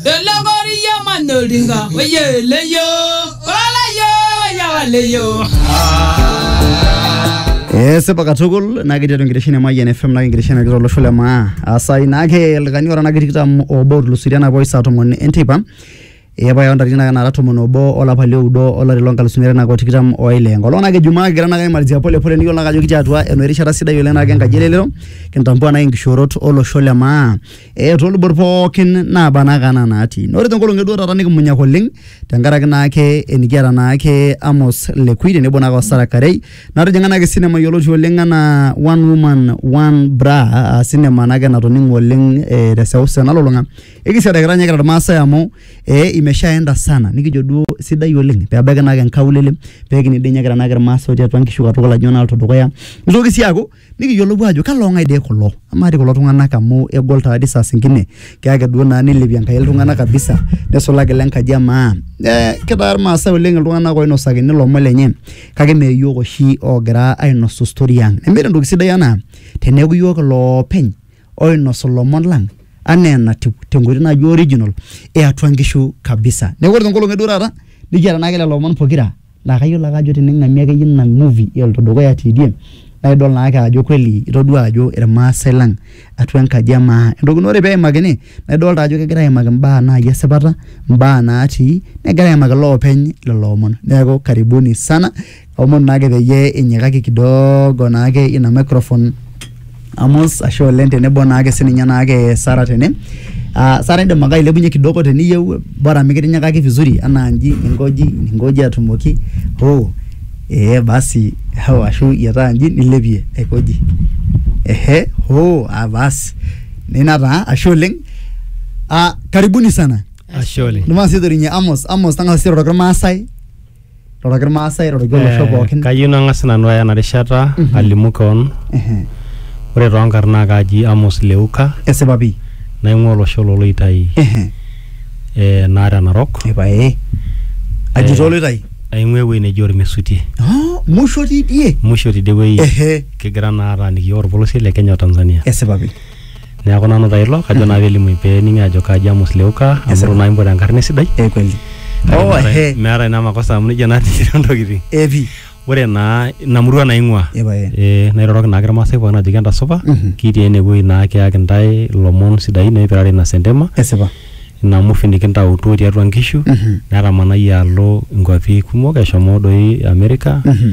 Elokoriyo manyolinga oyeleyo olayo yawaleyo. esipa katukul naa ketii atua enkitesheni e Mayian FM naa enkitesheni nagira olosho le maa asai naake oltung'ani ora naake tikitam obo otulusoitie enapa oshi saa tomon enteipa epae ontarikini naake naara tomon obo olapa lioudo olari lonkalusuni are naake otikitam oile enkolong naake ijumaa kigira naake aimalizia pole pole nikiyiolo naake ajo kitii atua enoshi rishata sidai oleng naake enkaji elelero kintambua naake inkishoorot olosho le maa eh, toolubot pookin naaba naa ake anaa naatii na ore tenkolong eduo taata nikimunyak oleng tenkaraki naake enikiata naake Amos Lekui tenebo naake Osara Karei natijing'a naake sinema yioloti oleng anaa One Woman One Bra aa sinema naake natoning'o oleng eh, teseuseu nalulung'a ekisiada kira ninye kira irmaasai amu eh, imeshaenda sana nikijo duo sidai oleng pebaiki naake nkaulele pekini dii ninye kira naake irmaasai otii atua nkishu katukul ajo naa aloito dukuya nitoki sii aaku nikiyiolou ajo kalo ng'ae dee kulo amaa dii kulo tung'anak amu egol taa dii saa singine kake ake duo naa nilepie Enkai iltung'anak kabisa nesulaki ile nkaji e maa eh kitaa irmaasai oleng iltung'anak oinosakini ilomon lenye kake mee iyiok oshi ogira ainosu story ang nemeeta entoki sidai anaa teneeku iyiok iloopeny. oinosu ilomon lang anaa enatiu tenkoitoi naji original eatua nkishu kabisa. Neeku ore tenkolong eduo taata nikiata naake lelo omon pokira laa kayiolo ake ajo tening'amie akeyie ina movie eloito dukuya te idm naidol naake ajo kweli itodua ajo irmaasai lang atua enkaji e maa. Entoki naa ore peimakini naidolta ajo kegirai aimaki imbaa nai e sipata, imbaa natii, negirai aimaki iloopeny lelo omon. Neeku karibuni sana. Omon naake peyie inyikaki kidogo naake ina microphone Amos, ashe oleng tenebo naake sininye naake Sarah tene. Ah, Sarah indim ake ailepunye kidogo teniyieu bora mikitinyikaki vizuri anaa nji ninkoji ninkoji atumoki hoo ee basi hoo ashu iyietaa nji nilepie aikoji ehe hoo ah basi nina taa ashe oleng. Ah, karibuni sana. Ashe oleng. Ndio maana sisi torinye Amos, Amos tang'asa sisi airoroki Irmaasai roroki irmaasai roroki olosho Eh, pookin Kayieu nang'as nanu aya ena rishata Mhm. alimu keon. Ehe. Ore toonkarn naa kaaji Amos Leuka esipa pii naing'ua olosho loloitai Ehe. eh, Narok Narok. epae aji Eh. toloitai Aing'ua ewueji neji Ormesuti. Ah, musho tidie Musho tidie wueji ehe kigira naa ataaniki iyiook orpolosie le Kenya o Tanzania. esipa pii neeku nanu taa ilo kajo naa pelimuni pening'i ajo kaji Amos Leuka amu Yes, itu naa impotu enkarna esidai eh, kweli Kake oh meeta- he meeta ina makosa amu nejia natii ntokitin epi ore naa ina murua naing'ua epae Eh, nairoroki naake irmaasai pookin ajoki entasupa Mhm. kitii enewueji naa kiyaki ntae ilomon sidain oipirare ina sentema esipa ina mufi nikintautuo tiatua nkishu Mhm. netamanayie alo inkuapi kumok eshomo doi Amerika Mhm.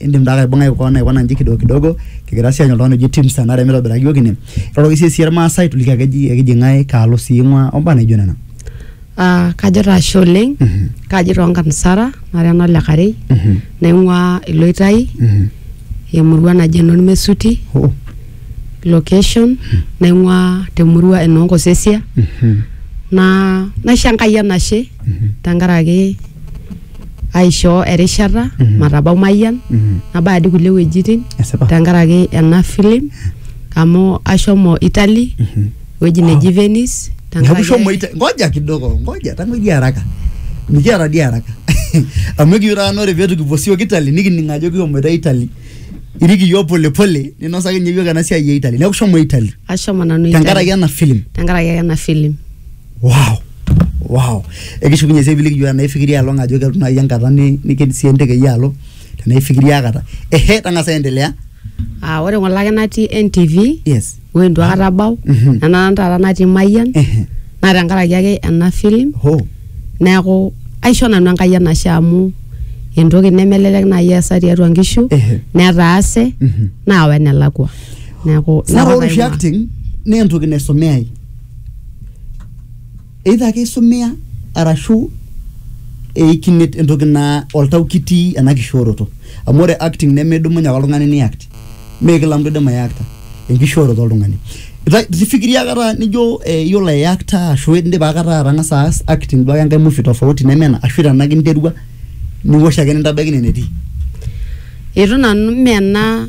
indim taa aibung'ai koon aikuna nji kidogo kidogo kigira sii aanyu oltung'ani oji Tim Sanare mitobiraki iyiook ine iroroki sii sii irmaasai tuliki ake eji ekiji ng'ae kaalo sii ing'ua ombaa naijo nena Ah, kajo taa ashe oleng Mhm. kaji toonkarn Sara nara ena ole Karei Mhm. naing'ua Iloitai Mhm. emurua naji Enormesuti Oh. location naing'ua temurua Enoonkosesia Mhm. naa naisho Enkai enashe Mhm. tenkaraki aishoo erishata matabau Mayian nabaya adi kulie wuejitin Esipa. tenkaraki ena film amu ashomo Italy ewueji neji Venice Neeku tenkaraki shomo ita- ngoja kidogo ngoja tang'oidia haraka mikiata dii haraka amu ekiyieu taata naa ore peetu kipuo siok Italy nikining ajo kihomoita Italy irik iyiook polepole ninosaki ninye iyiook ena siai e Italy neeku shomo Italy ashomo nanu Italy tenkaraki ena film tenkaraki ena film wow wow ekishukunye sii piiliki iyiok enaa ifikiria along ajo kelotu naaji enkata ni- nikidim sii enteke iyie alo tenaa ifikiria aikata ehe tang'asa aendelea Ah, ore ng'ole ake natii NTV yes woi itu aikata abau Mhm. nena taata natii Mayian ehe naa tenkaraki ake ena film ho neeku aisho nanu Enkai enashe amu entoki nemelelek naaji eesa tiatua nkishu Ehe. netaase Mhm. naawa enelakua neeku ina naa ore kop oshi aing'ua. acting naa entoki naisomeyai either ake isumia arashu eikine entoki naa oltau kitii ena kishooroto amu ore acting nemedumunye ake oltung'ani ni act mee kila mtu oidim aiakta enkishooroto oltung'ani Ita- tifikiria akata nijo eh, iyiolo aiakta ashu indipa akata atang'asa aas acting duo ake enkae movie tofauti neme ena ashu tenake interua niwosh ake nintabaiki ine netii Eitu nanu mee ena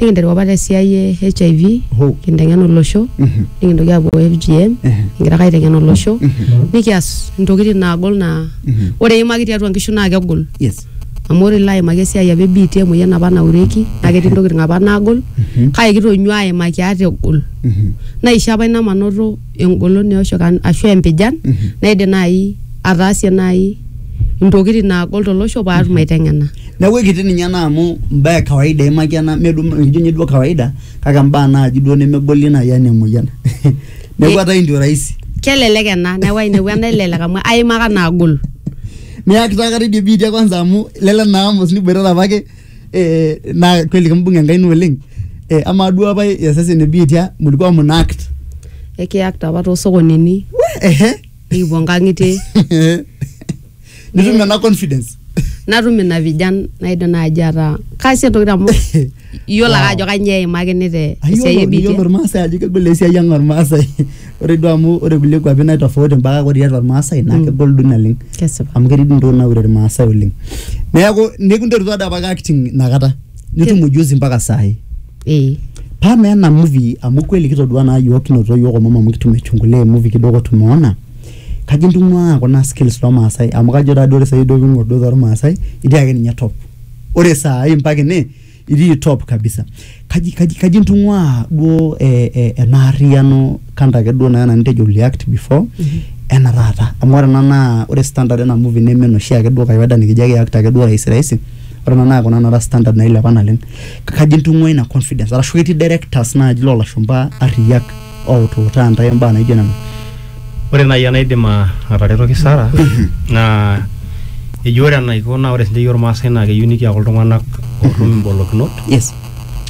nikinteru apa te siai e HIV Ho. kinteng'en olosho Mhm. nikintoki aapuo FGM Mhm. kigira ake aiteng'en olosho Mhm. nikias intokitin naagol naa Mhm. ore eimaki tiatua nkishu naa kegol Yes. amu ore ilo aimaki esiai apa ebiitia emoyian apa naureki naa ketii intokitin apa naagol Mhm. kake kitonyua aimaki ate egol Mhm. naisho apa ina manoto engolon eosho kan- ashu empijan Mhm. naidim naaji ataasie naaji intokitin naagol tolosho paatum aiteng'ena Neeku ekiti ninye ena amu imbaa e kawaida eimaki ena mee duo ijo ninye duo kawaida kake imbaa naaji duo nemegoli naaji enaa emoyian. Neeku etaa endio rahisi. Kelelek ena neeku ai neeku enaelelek amu aimaka naagol. Niyakita aikata idia biitia kwanza amu lele naa Amos niboitata apake eh naa kweli kimbung'a Enkai ino oleng. Eh amaa duo apa iyasasa ene biitia mlikuwa mnaakt? Ekiakta apa too sokonini. Wee ehe. nikipuo nkang'itie nitum ena confidence natum ina vijan naidim naaji ataa kaasie ntokitin amu iyiolo ake Wow. ajo kanyoo eimakini te esiai Ayiolo iyiolo ebiitia irmaasai ajo kegol esiai ang ormaasai ore duo amu ore kulie kuapi naitofauti mpaka ore tiatua irmaasai naa kegol duo naleng kesipa amu ketii duo ntokitin naure irmaasai oleng neeku nikinterutua doi apake acting inakata nitum ujuzi mpaka saai ee paa mee ena movie amu kweli kitodua naa yiok kinotito yiok omom amu kitum aichungulia emovie kidogo tumeona kajo intung'ua kuna skills tormaasay amu kajo taa duo ore saai duo ping'orr duo tormaasay itii ake ninye top ore saai mpaka ene itii top kabisa kaji kaji kaji intung'ua duo eh eh ena arriyiano kando ake duo naa ena nitejo uli act before ena taata amu ore ena naa ore standard ena movie neme enoshi ake duo kawaida nikijo eki act ake duo rahisi rahisi. ore ena naa kuna naara standard nailepa naleng kaji intung'ua ina confidence arashu ketii directors naaji loolashumpa arriyiak outuutaa intae imbaa naijo nena ore naaji enaidim a- ataretoki Sara naa eji ore enaiko naa ore sinche iyiook irmaasai naa keyieu nikiaku iltung'anak ootum imbolokinot yes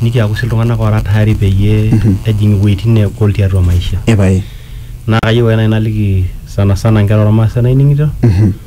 nikiaku sii iltung'anak oora tayari peyie ejing iwueitin neegol tiatua maisha epae naa kayieu ake naaji naliki sana sana inkera ormaasai naining'ito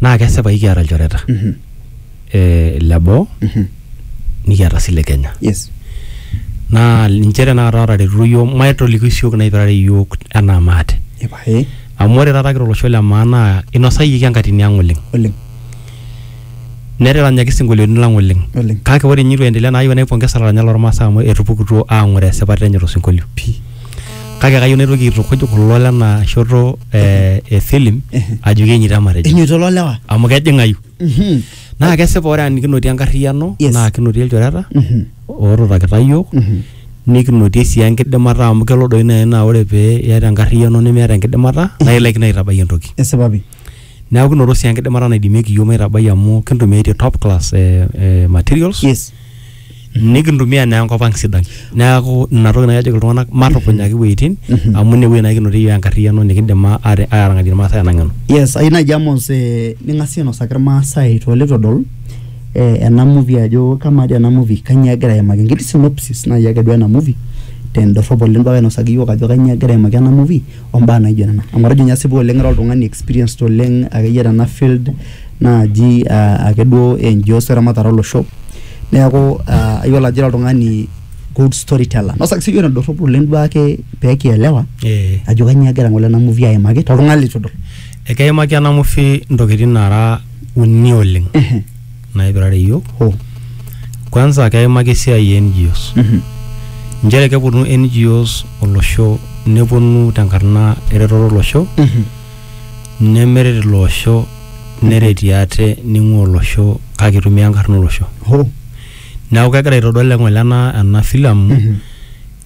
naa kesipa ikiata ilchoreta Mhm. eh, le boo Mhm. nikiata sii le kenya Yes. naa ninche tenakata ootaretutuo iyiook maitoliki siook naipirare iyiook enaa maate Epae. amu ore taata kira olosho le maa naa inosayieki enkatini ang oleng Oleng. neteranyaki isinkolioitin lang oleng Oleng. kake ore inye itu endelea naa ayieu naipongesa ilaranyak lormaasai amu etupukutuo aang'oroo esipata enye tosinkolio Pii. kake kayieu naitoki aitukuj kulo lena shoto eh, e film ajoki enyita matejo enyoito loo lewa amu kejing'ayu Mhm. naa kesipa ore ani kinotie enkarriyiano Yes. naa kinotie ilchoreta Mhm. ootutakita yiok Mhm. nikinotie sii enkidimata amu kelo doi naaji naa ore pee iyata enkarriyiano nemeeta enkidimata naa ilaikino aitabai entoki esipa pi neeku kinoto sii enkidimata naidimieki yiok maitabai amu kintumiaitie top class eh, eh, materials yes nikintumia naa enkop ang sidai neaku ina toki nai ajoki iltung'anak matupunyaki iwueitin amu ine wuei naa kinotie iyiook enkarriyiano nikindim a- ate- atarang'atie irmaasai ena ng'eno yes ayieu naaji Amos eh, ning'asie ainosaki irmaasai toolitu edol eh, ena movie ajo kamaa dii ena movie kanyio egira aimaki enkiti synopsis naaji ake duo ena movie tendorrop oleng duo ake ainosaki iyiook ajo kanyio egira aimaki ena movie ombaa naijo nena amu atejo ninye asipu oleng ira oltung'ani experienced oleng akeyie tena field naaji ake duo NGOs eramatare olosho neeku ayiolo ajo ira oltung'ani good story teller nosaki siiyie enedorrop oleng duo ake pekielewa Eh. ajo kanyio egira ng'ole ena movie aimaki toltung'ani litu idol Ekeimaki ena movie intokitin nara uni oleng Ehe. naipirare iyiok. Oh. Kwanza keimaki esiai e NGOs. Mhm. Nchere keponu NGOs olosho neponu tenkarna eretoto olosho Mhm. nemeret ilo osho neretie ate ning'ua olosho kake itumia enkarna olosho Hoo. neeku kegira aitodol eng'ole ena ena filamu Mhm.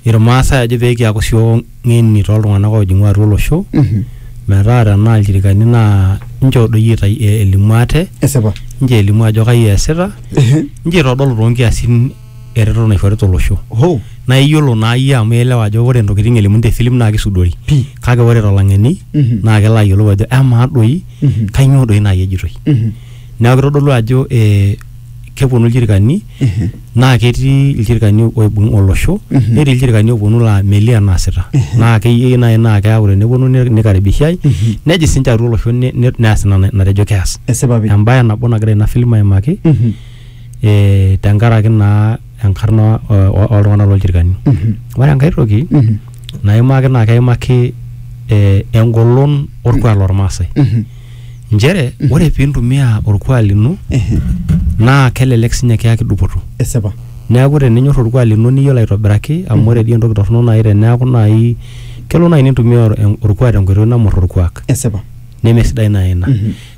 irmaasai ajo pee kiaku sio ng'eni toltung'anak oojing'u atua olosho Mhm. metaa tenaa ilchirikani naa inchoo doi itai- elimu ate esipa inchoo elimu ajo kai eesita Ehe. inchoo itodolu toonkiasin eretoto naishorita olosho Hoo. naa iyiolo naa iyie amu ielewa ajo ore ntokitin elimuni te filim naa kisudori Pii. kake ore tolang'eni Mhm. naa kelo ayiolou ajo amaa doi Mhm. kainyoo doi naaji ejitoi Mhm. neeku kitodolu ajo eh, keponu ilchirkani Mhm. naa ketii ilchirkani oibung olosho Mhm. netii ilchirkani oponu laa melio enaasita naa keyieu naaji naa keeku teneponu ni- nikaribishai Mhm. nejing sinche atua olosho ne- ne- neas ina na- natejo keas Esipa pii. embae nabo nagira ina filim aimaki Mhm. tenkaraki naa enkarna oltung'ana loo ilchirkani. Ore enkae toki naimaki naa keimaki engolon olkuak loo ilmaasai. Nchere ore pee intumia olkuak lino naa kelelek sii ninye kiyaki dupoto. Esipa. Neaku teninyor olkuak lino niyiolo aitobiraki amu ore dii entoki torono naa teneaku naaji kelo naaji nintumia olkuak tenkoitoi nemor olkuak. Esipa. Nemesidai naa ina.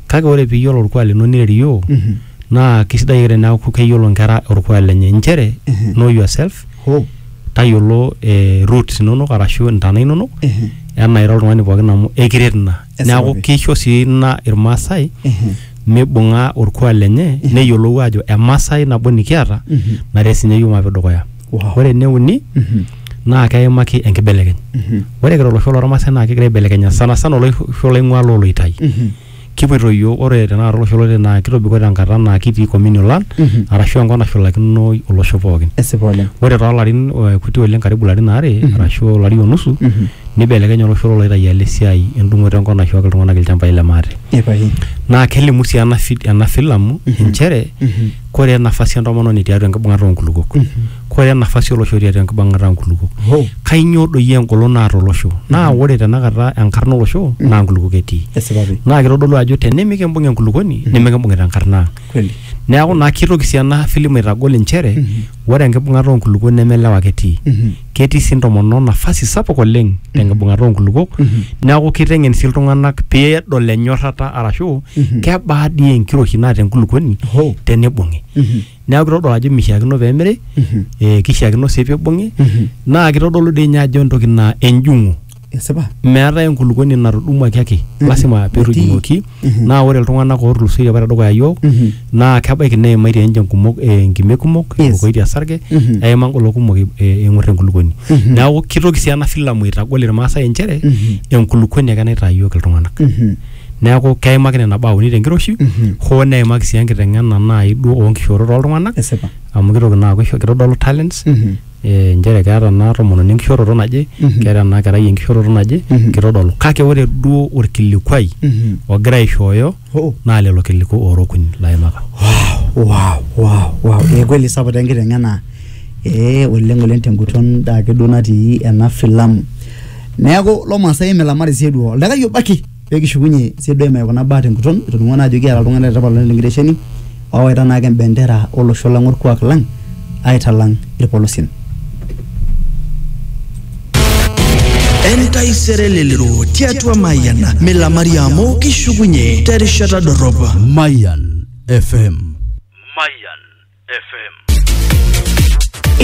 kake ore piyiolo orkuak lino nirerioo Mhm. naa kisidai ake teneaku keyiolo nkera orkuak lenye inchere Mhm. know yourself Ho. tayiolo eh, roots inonok arashu intana inonok Mhm. enaa ira oltung'ani pookin amu ekiret ina Esipata. neaku kisho sii ina irmaasai Mhm. mibung'a orkuak lenye neyiolou aajo emasai nabo nikiata Mhm. naret sinye yiok maape dukuya Wa- ore ene uni naa keimaki enkibelekeny ore kira olosho lormaasai naa kigira aibelekenya sana sana olosho laing'ua loo loitai kipoito yiok ore tenakata olosho loloitai naa kitobiko tenkata naa kitii communal land arashu enkop nashulakino olosho pookin esipa oleng ore toolarin eh, kuti oleng karibu ilarin aare arashu olari onusu nibelekenya olosho loloitai alo esiai endung'oto enkop naishooki iltung'anak ilchambai le maate ipae naa kelimu sii ena fi- ena filamu inchere kore nafasi entomononi tiatua enkibung'ata oonkulukuok kore nafasi olosho tiatua enkibung'ata oonkulukuok Hoo. kainyoo doi engolon naata olosho naa ore tenakata enkarna olosho naa nkulukuok etii Esipa pi. naa kitodolu ajo tenimikimbung enkulukuoni nimikimbung'ita enkarna ang Kweli. neeku naa kitoki sii ena filim aitagol inchere ore enkibung'ata oonkulukuok neme ilewa ake etii ketii sii ntomonok nafasi sapuk oleng tenkibung'ata oonkulukuok neeku kiteng'en sii iltung'anak peedol enyorrata arashu kebaa dii enkiroshi naata enkulukuoni Hoo. tenibung'i neeku kitodol ajo mishiakino peemiri eh, kishiakino sii pibung'i naa kitodolu dii ninye ajo entoki naa enjung'u esipa meetae enkulukuoni natudumuaki ake lasima petujumoki Mhm. naa ore iltung'anak ootulusoitie apa tedukuya yiok Mhm. naa kebaiki neimaitie ninche nkumok eh, nkime kumok Yes. ewokoitie esarge Mhm. eima ngolo kumok eh, eng'or enkulukuoni Mhm. neeku kitoki sii ena filamu aitagol irmaasai inchere Mhm. enkulukuoni ake naitaa yiok iltung'anak Mhm. neeku keimaki nena baa uni tenkiroshi Mhm. hoo neimaki sii enkiteng'ena naai duo oonkishoorot oltung'anak esipa amu kitoki naa aaku isho- kitodolu talents Mhm. eh, nchere keeta ena tomononi enkishoroto naje Mhm. keeta ena kerai enkishoroto naje Mhm. kitodolu kake ore duo orkilikuai Mhm. ogira aishooyo Oh. naa lelo kiliku oorokuny laimaka wow, wow, wow. Eh, kweli sapuk taa enkiteng'ena eh, oleng oleng tenguton daa ake duo natii ena filamu neeku lomaasai imilamari sii duo oldakai obo ake pee kishukunye CDM e kuna baa tenguton etoning'o naa ajo kiata iltung'anak le tipat oleng tenkitesheni oowaita naake embendera olosho lang orkuak lang aitalang irpolosien. entaisere lelero tiatua mayian milamari amu kishukunye terishata dorrop Mayan FM. Mayan FM.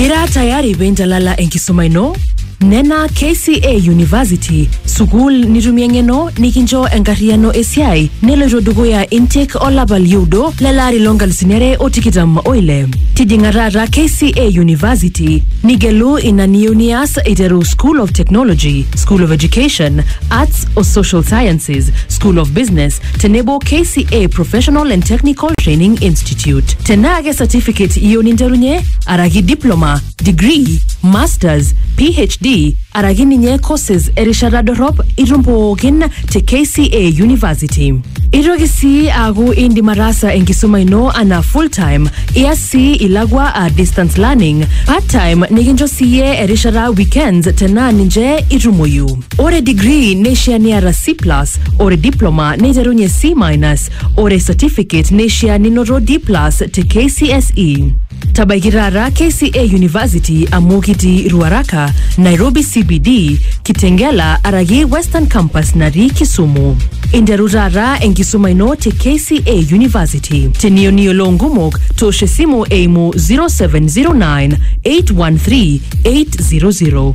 Ira tayari penjalala enkisuma ino? Nena KCA University, sukuul nitumie ng'eno nikincho enkarriyiano esiai neloito dukuya intake olapa lioudo lelaari lonkalusuni are o tikitam oile. Tijing'a taata KCA University nigelu ina niyieu nias eiteru School of Technology, School of Education, Arts o Social Sciences, School of Business, tenebo KCA Professional and Technical Training Institute. Tenaa ke certificate iyieu ninterunye, araki diploma, degree, masters, PhD, araki ninye courses erishata dorrop itum pookin te KCA University. Itoki sii aaku indim ataasa enkisuma ino anaa full time, ias sii ilakwa a distance learning, part time nikincho siiyie erishata weekends tenaa ninche itumoyu. Ore degree neishaa niata C+, ore diploma neiterunye C-, ore certificate neishaa ninoto D+ te KCSE. Tabaiki taata KCA University amu kitii Ruaraka, Nairobi CBD, Kitengela araki Western Campus natii Kisumu. Interu taata enkisuma ino te KCA University. Teniyieu niyiolou nkumok, toosho esimu eimu 0709 813 800.